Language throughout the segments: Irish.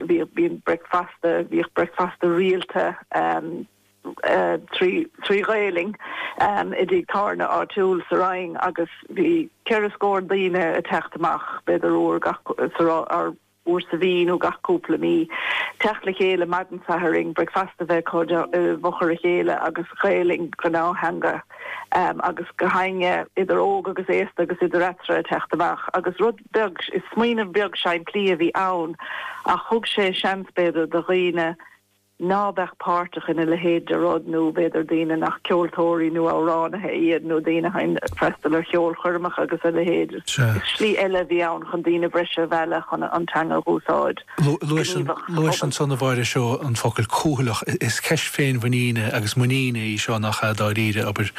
bhíodh, bíonn, bricfeasta, bhíodh bricfeasta rialta trí Ghaelainn i dtigh tábhairne áitiúil sa Rinn agus bhí ceithre scór daoine ag teacht amach b'fhéidir uair gach, uair sa mhí nó gach cúpla mí, teacht le chéile maidin Sathairn, bricfeasta bheith acu i bhfochair a chéile agus Gaelainn, gnáth-theanga, agus go háirithe idir óg agus aosta agus idir eatarthu ag teacht amach agus rud. beag. Is smaoineamh beag simplí a bhí ann ach thug sé seans, b'fhéidir, do dhaoine ná beadh páirteach ina leithéid de rud nó, b'fhéidir, daoine nach ceoltóirí nó amhránaithe iad nó daoine a thagann ag freastal ar cheolchoirmeacha agus a leithéid. Is slí eile a bhí ann chun daoine breise a mhealladh chun an teanga a úsáid. gníomhach sa Luaigh an phobal. son a bháire seó an focal cúthaileach. Is ceist féinmhuiníne agus muiníne í seo nach ea dáiríre, abair,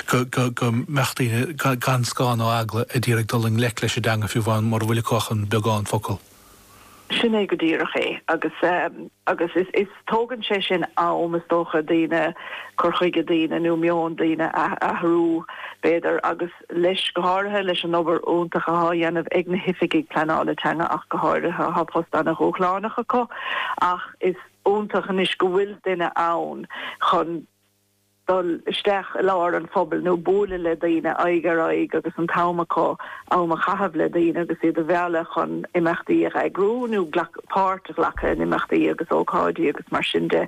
go mbeadh daoine gan scáth ná eagla ag d'iarraidh dul i ngleic leis an dteanga fiú amháin mura bhfuil acu ach an beagán focal. Sin é go díreach é. Agus agus is is tógann sé sin am, is dócha, daoine, cur chuige daoine nó meon daoine a athrú, b'fhéidir, agus. leis, go háirithe leis an obair iontach athá dhéanamh ag na hoifigigh pleanála teanga ach go háirithe, athá post ana dhúshlánach acu ach is iontach anois go bhfuil duine ann chun dul isteach i lár an phobail nó buaileadh le daoine aghaidh ar aghaidh agus an t-am acu am a chaitheamh le daoine agus iad a mhealladh chun imeachtaí a eagrú nó páirt a ghlacadh in imeachtaí agus ócáidí agus mar sin de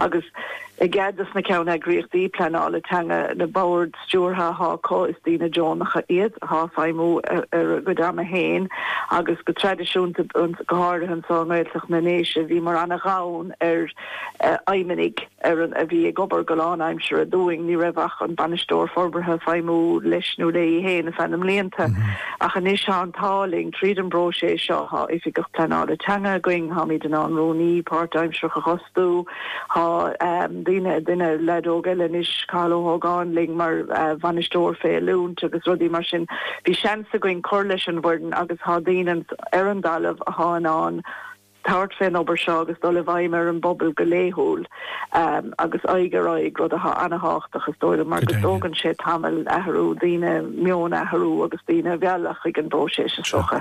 agus i gcead dos na ceanneagraíochtaí pleanála teanga, na boird. stiúrtha atá acu, is daoine deonacha iad thá ag feidhmiú ar a gcuid ama féin agus go traidisiúnta, go háirithe anseo i nGaeltacht na nDéise, bhíomar ana-ghann ar fheidhmeannaigh a bhí ag obair go lánaimseartha dúinn, ní raibh ach an Bainisteoir Forbartha ag feidhmiú leis nó léi féin ar feadh na mblianta ach anois tá an t-ádh linn, tríd an bpróiseas seo thá Oifigeach Pleanála Teanga againn, tháimid in ann Rúnaí páirtaimsearach a astu. Thá daoine, duine, leaid óg eile anois, Cathal Ó hÓgáin, linn mar bhainisteoir fé oiliúint agus rudaí mar sin. Bhí seans againn cur leis an bhfoireann agus thá daoine ar an dtalamh athá in ann tabhairt fén obair seo agus dul i bhfeidhm ar an bpobal go laethúil agus aghaidh ar aghaidh, rud athá ana-thábhachtach, is dóigh liom, mar go dtógann sé tamall athrú daoine, meon a athrú agus daoine a mhealladh chuig an bpróiseas, is dócha.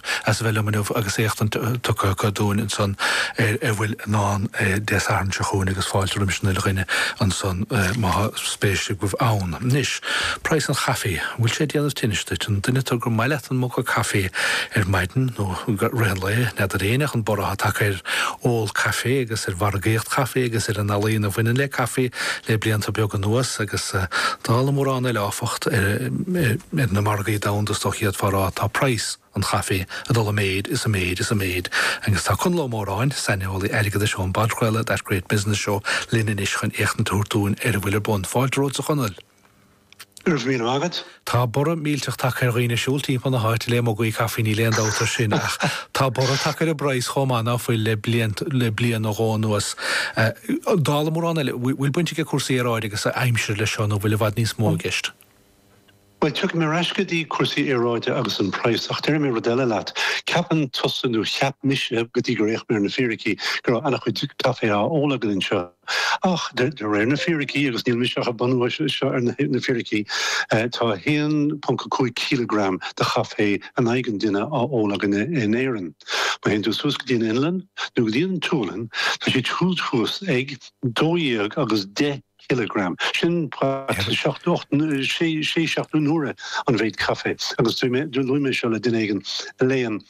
as a bheith liom inniu agus éachtaint tugtha dúinn ansan ar a bhfuil i ndán Dé Sathairn seo chugainn agus fáilte roimis an uile dhuine ansan má thá spéis agaibh ann. Anois, praghas an chaifé. An bhfuil sé ag déanamh tinnis duit? An duine tú gur maith leat an muga caifé ar maidin nó i rith an lae? N'fheadar éinne an borradh atá tagtha ar ól caifé agus ar mhargaíocht caifé agus ar an ealaíon a bhaineann le caifé le blianta beaga anuas agus dála mórán eile áfach ar na margaí domhanda is dócha, d'fhéadfá a rá, tá praghas. an chaife ag dul i méid is i méid is i méid agus tá Conall Ó Móráin, saineolaí airgeadais ón bpodchraoladh That Great Business Show, linn anois chun éachtaint a thabhairt dúinn ar a bhfuil ar bun. Fáilte romhat, a Chonaill! Go raibh míle maith agat. Tá borradh millteach tagtha ar dhaoine ag siúl timpeall na háite le mugaí caife, níl aon dabht ar sin, ach tá borradh tagtha ar an bpraghas chomh maith ná fuil le bliain, le bliain nó dhó anuas. Dála mórán eile, bhfuil baint ag cúrsaí aeráide agus aimsire leis seo nó bhfuil i bhfad níos mó i gceist? Bhuel, tiocfaidh mé ar ais go dtí cúrsaí aeráide agus an praghas, ach déarfaidh mé rud eile leat. Ceapann tusa, nó cheap mise, go dtí gur fhéach mé ar na fíricí, go raibh an-chuid caife á ól againn anseo. Ach, de réir na fíricí, agus níl mise ach ag bunú seo ar na fíricí, tá 1.5 cileagram de chaife in aghaidh an duine á ól againn in Éirinn. Má théann tú suas go dtí an Fhionlainn, nó go dtí an tSualainn, tá siad siúd thuas ag dó dhéag agus deich cileagram. Sin about seacht nó ocht nó sé, sé seacht ocht n-uaire an mhéid caife. Agus dúirt mé, luaigh mé seo le duine éigin a léann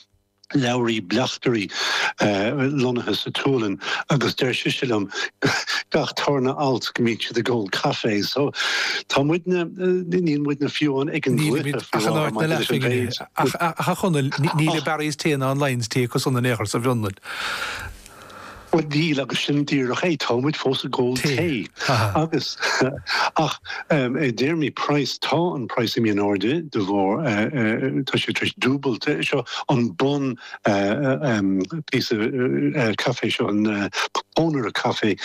leabhraí bleachtairí, lonnaithe sa tSualainn, agus deir sise liom, gach tarna alt, go mbíonn siad ag ól caife. So, tá muidne, níl muidne fiú amháin ag an gcluiche, faoi láthair, maidir leis an mhéid. Ach, a Chonaill, níl aon Barry's Tea ná aon Lyons Tea acu san in aon chor sa bhFionlainn. Bhuel, níl, agus sin díreach é, táimid fós ag ól tae. Agus, ach, i dtéarmaí praghas, tá an praghas imithe in airde de bharr, tá sé tar éis dúbailt, seo an bun píosa caife seo, an pónaire caife,